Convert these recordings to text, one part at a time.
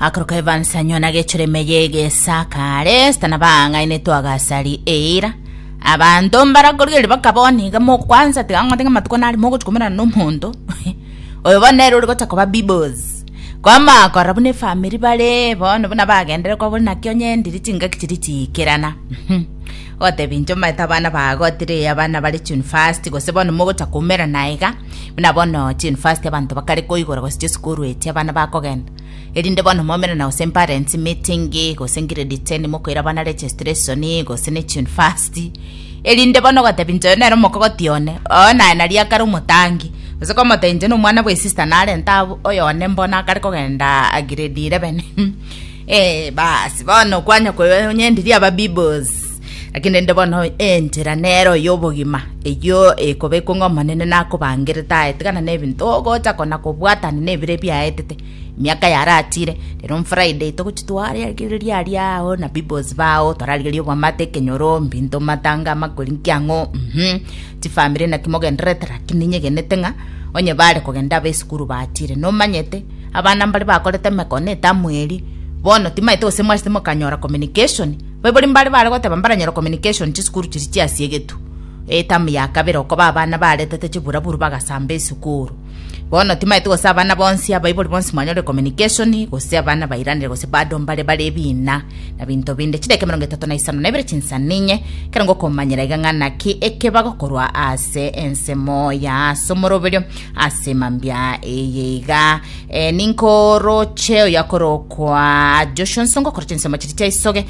Akoroka Evans anywa na gechureme yegesakare stana bang'aine twagasari eira abanto mbarakorigeri bakaboni iga mokwansa tiga ng'ote ng'a matuko nari mogochikomerana na omonto oyo bono nere ore gocha koba bibos kwama korora buna efamiri bare bono buna bagendererwa buna kionye ndiri chingaki chiri chiikerana Otebi inche omanyete abana ba gotiri abana bare chunifasti, gose bono mogocha koumera na iga, buna bono chunifasti abanto bakare koigora gose chisukuru echi abana bakogenda. Erinde bono moumere na gose parents meeting, gose grade 10 mokoira abana registration, gose ne chunifasti. Erinde bono ogotebi inche oyo nere omokogoti one, oo naye nari akare omotangi. Gose komotebia inche nomwana bwe sister narente abwo, oyo one mbono akare kogenda grade 11. Ee, basi bono kwanya konyendiria ababibbos, lakini rende bono enchera nero y'obogima, eyio ekobekwa ng'a Omonene nakobangerete aye, tigana n'ebinto ogocha kona kobwatana n'ebire biaetete emiaka yaratire. Rero on Friday togochi twararigereria aria ao na bibbos bao, twararigereria obwamate, ekenyoro, mbinto, matanga, amakori, nkiang'o, mhm. Chifamiri naki mogendererete lakini ninyegenete ng'a onye baare kogenda abe esukuru baatiire. Nomanyete, abana mbare bakorete emekone etamu eria. Bono timaete gose mwachete mokanyora communication. Baibori mbare bare goteba mbaranyore communication chisukuru chiria chiasiegetwe. Etamu ya kabere oko ba abana baaretete chiburaburu bagasamba esukuru. Bono timaeti gose abana bonsi, abaibori bonsi mwanyore communication, gose abana bairanire gose bado mbare bare ebina na binto binde. Chidakika emerongo etato na isano na ibere chinsa ninye, kero ngokomanyera iga ng'a naki eke bagokorwa ase ensemo ya ase omoroberio ase mambia eye iga. Eh, ninkoroche oyakorokwa Joshua, nso ngokora chinsemo chiria chia isoge,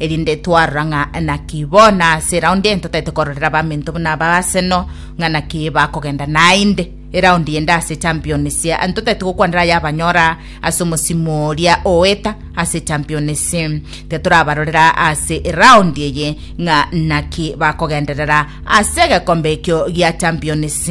erinde twarora ng'a naki bono ase eraundi eye totaete kororera baminto buna aba Arsenal ng'a naki bakogenda naende eraundi ende ase Champions, totaete gokwanera ayabanyora ase omosimu oria oeta ase Champions, titorabarorera ase eraundi eye ng'a naki bakogenderera ase egekombe ekio gia Champions.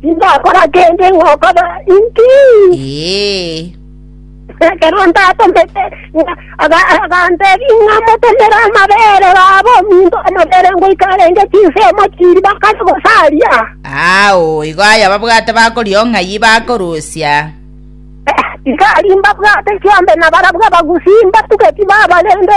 Tindakora kende ng'okoba inki? Ee. Ekero ndatomete ng'a- aga- agantebi ng'a motomere amabere babo ominto omobere ngoika arenge chinsemo chiri bakare gosaria. Ao, igo aye ababwate bakoria ong'ai bakorusia. Tikari mbabwate chiombe nabarabwo abagusi mbatugeti babarende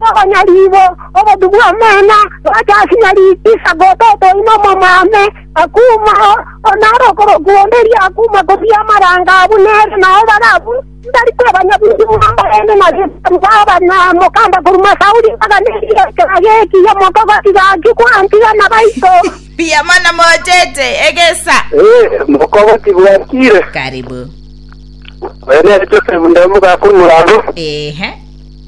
Nonya ribo obotu bw'omena bwacha ase nyariki sagoto otoina omomame, akuuma oo naro okorokwa onde erio akuuma kobua amaranga abwo nere nao bare abwo, ntari kwebanya bwingi bw'abarende na gesabu baba na mokanda korwa Sauli mpaka negiekera geki omoko gotiga ki kwantiga na baito. Mbuyamono mochete egesa. Ee, mokogoti bwakire. Karibu. Oyo nere Joseph nde omogaka omoraro. Ehe.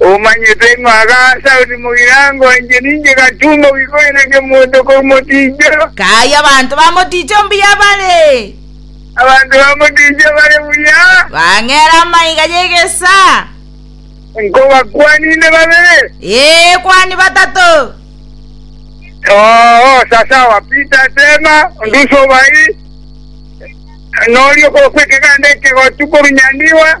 Omanyete ng'a Gasaoni mogirango inche ninche gatumba gwikoina kemonto korwa moticho. Kaai abanto ba moticho mbuya bare. Abanto ba moticho bare buya. Bang'era amaiga y'egesa. Nkobakwani inde babere. Ee, kwani batato. Oo, sasawa, Peter Tema, onde usobai, noria okorokwa ekeganda ekegotu korwa Nyandiwa.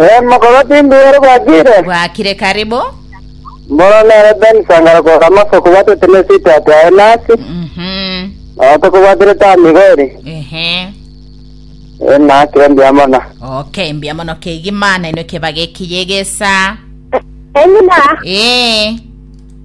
Eeno, korwa tindi ere bwakire. Bwakire kare bo. Mboro nere Ben Sangara korwa Damasco kobwatete ne sweetheart aye nasi. Mhm. Nabo tokobwaterete amigo ere. Ehe. Eh, nakire mbuya mono. Okay, mbuya mono kegima nainwe kebaga ekiya egesa. Engima. Eh.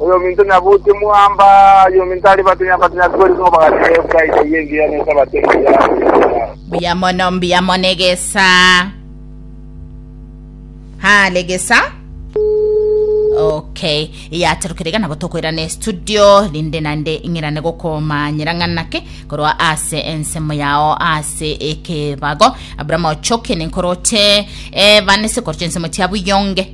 Oyominto nyabuti mwamba, oyominto aria batinya batinya kweri nigo bagatiga Ebraidi eyio engiya ne Esabato engiya ase emichie yabo. Mbuya mono, mbuya mono egesa. Hale egesa. Okay, yatorokire gana gotokoira ne studio rinde nande ing'irane gokomanyera ng'ana ki korwa ase ensemo yao ase ekebago Abraham Ochoki ninkoroche eh, bane sikoroche ensemo tia buyonge